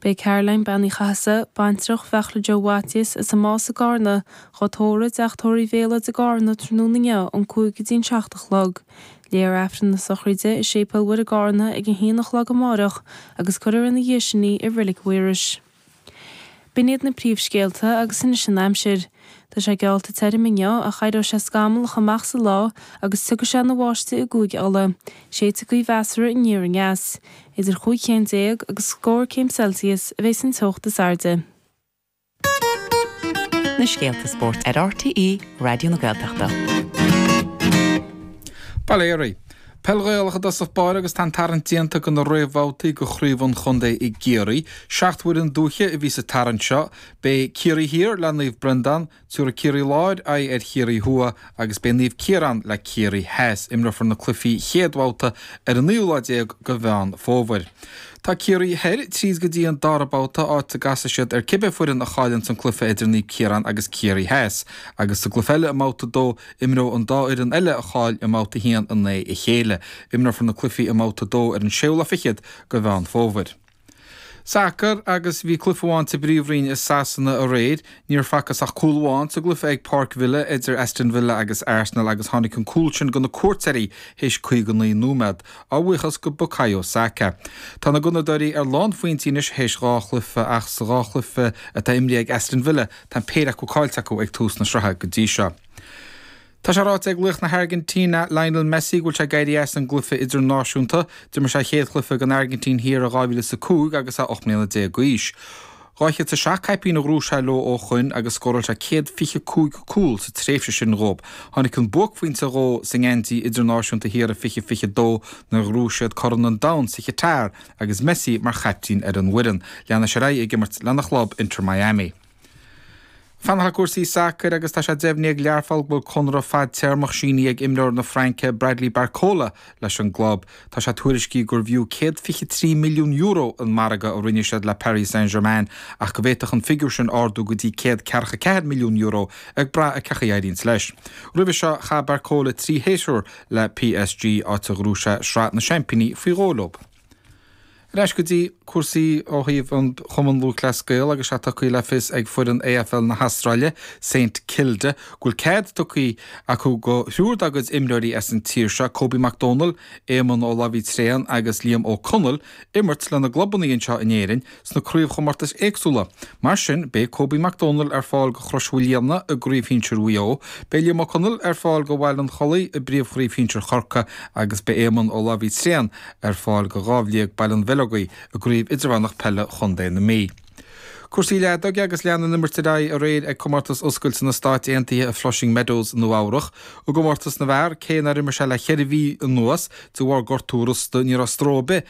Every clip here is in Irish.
Beidh Caroline, Bean Uí Chathasaigh, baintreach Bheachla Joe Mhaitiais, as an Más i gCarna, dhá tórramh i dTeach Tórraimh Uí Mhéalóid i gCarna tráthnóna inniu ón cúig go dtí an seacht a chlog. Léifear Aifreann na sochraide i Séipéal Mhuire i gCarna ag a haon a chlog amáireach agus cuirfear ina dhiaidh sin í i Reilig Mhaírois. B'in iad na príomhscéalta agus anois an aimsir. Tá sé geallta tirim inniu ach éireoidh sé scamallach amach sa lá agus tiocfaidh sé ina bháisteach i gCúige Uladh. Séidfidh gaoth mheasartha aniar aneas. Idir chúig chéim déag agus scór céim Celsius a bheidh an teocht is airde. na scéalta spóirt ar RTÉ Raidió na Gaeltachta. Bail ó Dhia oraibh. Peil Ghaelach i dtosach báire agus tá an tarraingt déanta do na réamhbhabhtaí de Chraobh an Chontae i gCiarraí. Seacht bhfoireann dúiche a bhí sa tarraingt seo, Beidh Ciarraí Thiar le Naomh Breandán, tiúrfaidh Ciarraí Láir aghaidh ar Chiarraí Thuaidh agus beidh Naomh Ciarán le Ciarraí Theas. Imreofar na cluichí chéad bhabhta ar an naoú lá déag de Mheán Fómhair. Tá Ciarraí Thoir tríd go dtí an dara babhta, áit a gcasfaidh siad ar cibé foireann a chailleann san cluiche idir Naomh Ciarán agus Ciarraí Theas, agus sa gcluiche eile i mbabhta a dó, imreoidh an dá fhoireann eile a chaill i mbabhta a haon in aghaidh a chéile. Imreofar na cluichí i mbabhta a dó ar an séú lá fichead de Mheán Fómhair. Sacar, agus bhí cluiche amháin sa bpríomhroinn i Sasana aréir. Níor facthas ach cúl amháin sa gcluiche ag Páirc Villa idir Aston Villa agus Arsenal agus tháinig an cúl sin go na cuairteoirí théis 59 nóiméad, a bhuíochas go Bukayo Saka. Tá na Gunnadóirí ar lánphointí anois théis dhá chluiche ach sa dhá chluiche atá imrithe ag Aston Villa tá an péire acu caillte acu ag tús na sraithe go dtí seo. Tá sé ráite ag laoch na hAirgintíne, Lionel Messi, go bhfuil sé ag éirí as an gcluiche idirnáisiúnta. D'imir sé a chéad chluiche don Airgintín thiar in 2005 agus é 18 mbliana d'aois. 207 caipín a ghnóthaigh sé leo ó shoin agus scóráil sé 125 cúl sa tréimhse sin dhóib. Tháinig an buaicphointe dhó sa ngeansaí idirnáisiúnta thiar i 2022 nuair a ghnóthaigh siad Corn an Domhain sa Chatar agus Messi mar chaiptín ar an bhfoireann. Leanfaidh sé ar aghaidh ag imirt lena chlub Inter Miami. Fanacht le cúrsaí sacair agus tá sé deimhnithe ag Learpholl go bhfuil conradh fadtéarmach sínithe ag imreoir na Fraince Bradley Barcola leis an gclub. Tá sé tuairiscithe gurbh fhiú €123 milliún an margadh a rinne siad le Paris Saint-Germain ach go bhféadfadh an figiúr sin ardú go dtí €144 milliún ag brath ar cén chaoi a éiríonns leis. Roimhe seo, chaith Barcola trí shéasúr le PSG, áit a ghnóthaigh sé Sraith na Seaimpíní faoi dhó leo. Ar ais go dtí cúrsaí ó thaobh an Chumann Lúthchleas Gael agus é tugtha le fios ag foireann AFL na hAstráile, Saint Kilda, go bhfuil cead tugtha acu go thriúr dá gcuid imreoirí as an tír seo, Kobe Mac Domhnaill, Éamonn Ó Labhraí Tréan agus Liam Ó Conaill, imirt lena gclubanna anseo in Éirinn. sna craobhchomórtais éagsúla. Mar sin, beidh Kobe McDonald ar fáil go Chrois Mhaoilíona i gCraobh Shinsir Mhaigh Eo, beidh Liam Ó Conaill ar fáil go Bhaile an Chollaigh i bPríomhchraobh Shinsir Chorcaí agus beidh Éamonn Ó Labhraí Tréan ar fáil go Dhamhliag Baile an Bheileogaigh i gCraobh Idirmheánach Peile Chontae na Mí. Cúrsaí leadóige agus lean an imirt ar aghaidh aréir ag Comórtas Oscailte na Stáit Aontaithe i Flushing Meadows i Nua-Eabhrac. I gcomórtas na bhfear, cé nár imir sé le cheithre mhí anuas de bharr gortú rosta, ní raibh stró ar bith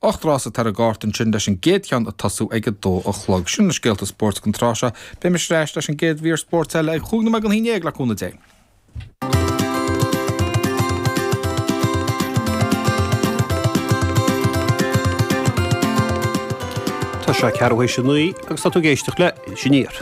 Ocht rása atá ar an gcárta ansin leis an gcéad cheann ag tosú ag a dó a chlog. Sin na scéalta spóirt don tráth seo. Beidh mise ar ais leis an gcéad mhír spóirt eile ag chúig nóiméad don aon déag, le cúnamh Dé. Tá sé ceathrú théis a naoi agus tá tú ag éisteacht le Iris Aniar.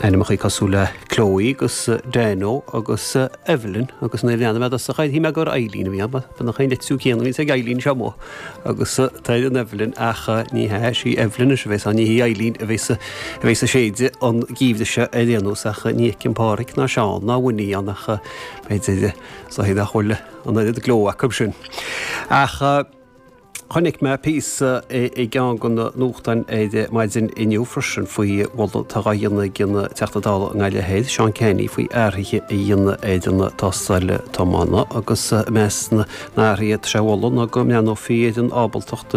Ainmneacha cosúil le Chloe agus Dano agus Evelyn agus nuair a léigh mé ar dtús é cheap mé gur Eibhlín a bhí ann, mar nach é an litriú céanna a bhíonns ag Eibhlín seo amuigh agus atá ar an Evelyn ach ní hea, is í Evelyn anois a bheas ann, ní hí Eibhlín a bheas ag séideadh an geimhreadh seo ar aon nós ach ní fheicim Páraic ná Seán ná Winnie ann ach b'fhéidir, is dóigh nach bhfuil an oiread gleo acu sin. Ach. Chonaic mé píosa i gceann de na nuachtáin maidin inniu freisin faoi mholadh atá á dhéanamh ag an Teachta Dála i nGaillimh Thoir, Seán Canney, faoi athruithe a dhéanamh ar an tástáil tiomána agus i measc na n-athruithe atá á moladh ná go mbreathnófaí ar an ábaltacht